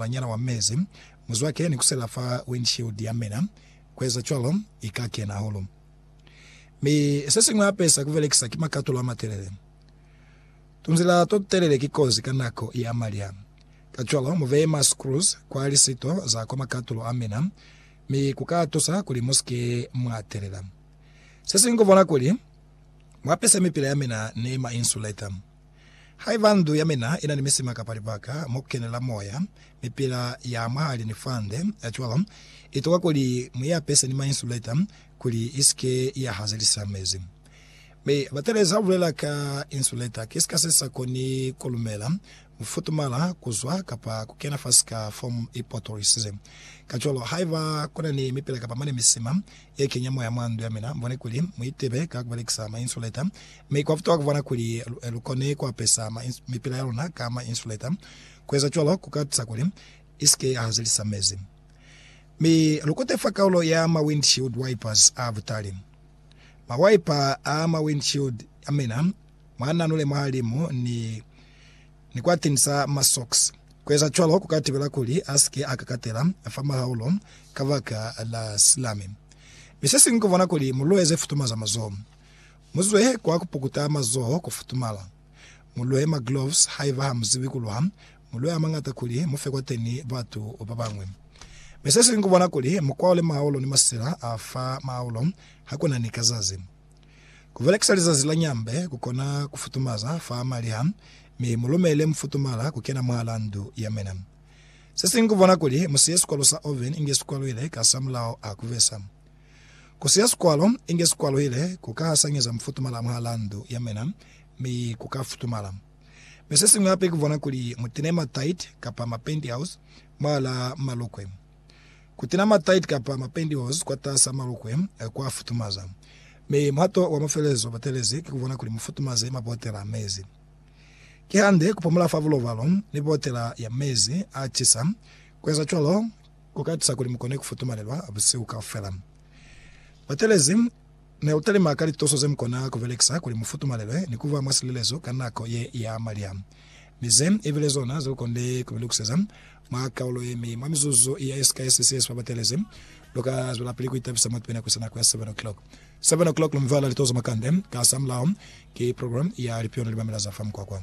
Banyana wa mezi, muzwake ni kusela fa windshield ya mina. Kueza cwalo, i ka kena hahulu. Mi sesiñwi hape sa kubelekisa ki makatulo amatelele. Tunzila totutelele ki kozi ka nako ya malya. Kacwalo, mubeye ma screws kwa lisito za kwa makatulo a mina, mi kuka tusa kuli musike mwa telela. Sesiñwi kubona kuli mwapese mipila ya mina ni ma insulator. Haiba ndu ya mina ina ni misima kapa libaka mo kukenela moya, mipila ya mwahali ni fande ya cwalo, itokwa kuli muiapese ni ma insulator kuli isike ya hazelisa mezi. Mi Batelezi abulela ka insulator, ki sika sesa koni kulumela kufutumala kuzwa kapa kukena fa sika foam ipotolisize. Kacwalo, haiba kuna ni mipila kapa mane misima ya kenya moya mwa ndu ya mina, mubone kuli mu itibe ka kubelekisa ma insulator, mi kwa futa kubona kuli lu kone kuapesa mipila ya luna ka ma insulator. Kueza cwalo ku ka tusa kuli isike ya hazelisa mezi. Mi lu kute fa kaulo ya ma windshield wipers a butali. Ma wiper a ma windshield a mina mwa nanule mwahalimu ni. ni kwa tinisa masocks. Ku eza cwalo ku ka tibela kuli a si ke a kakatela fa mahaulo ka baka la silami. Mi se siñwi ku bona kuli mu lueze futuma za mazoho. Mu zwehe kwa ku pukuta mazoho ku futumala. Mu luhe magloves haiba ha mu zibi ku luha, mu lue a mañata kuli mu fe kwateni batu ba bañwi. Mi se siñwi ku bona kuli mu kwaole mahaulo ni masila a fa mahaulo ha ku na ni kazazi. Ku belekisa lizazi la nyambe ku kona ku futumaza fa maliha, mi mu lumele mufutumala ku kena mwahala ndu ya mina. Se siñwi ku bona kuli mu siye sikwalo sa oven inge si kwaluhile kasamulaho a ku besa. Ku siya sikwalo inge si kwaluhile ku ka hasanyeza mufutumala mwahala ndu ya mina, mi ku ka futumala. Mi se siñwi hape ku bona kuli mu tine ma tight kapa ma pantyhose mwahala malukwe. Kutena mataiti kapa mapantyhose kwataas'a malukwe kwa futumaza, mi muhato wa mafelelezo batelezi ki kubona kuli mufutumaze mabotela a mezi. Kihande, kupumula fa bulobalo ni botela ya mezi a cisa, kueza cwalo kuka tusa kuli mukone kufutumalelwa busihu kaufela. Batelezi neutalima ka lituso zemukona kubelekisa kuli mufutumalelwe ni kuba mwa silelezo ka nako ye ya malya, mi ze ibile zona zelukonde kubelukuseza Mwa kaulo ye mi, mwa mizuzu ya SKS se si babatelezi, lu ka zwelapili ku itabisa mwa tubena ku sa nako ya 7 o'clock. 7 o'clock lu mi vala litozo mwa kande, kasamulaho ki program ya Lipionali Mamela za fa Mukwakwa.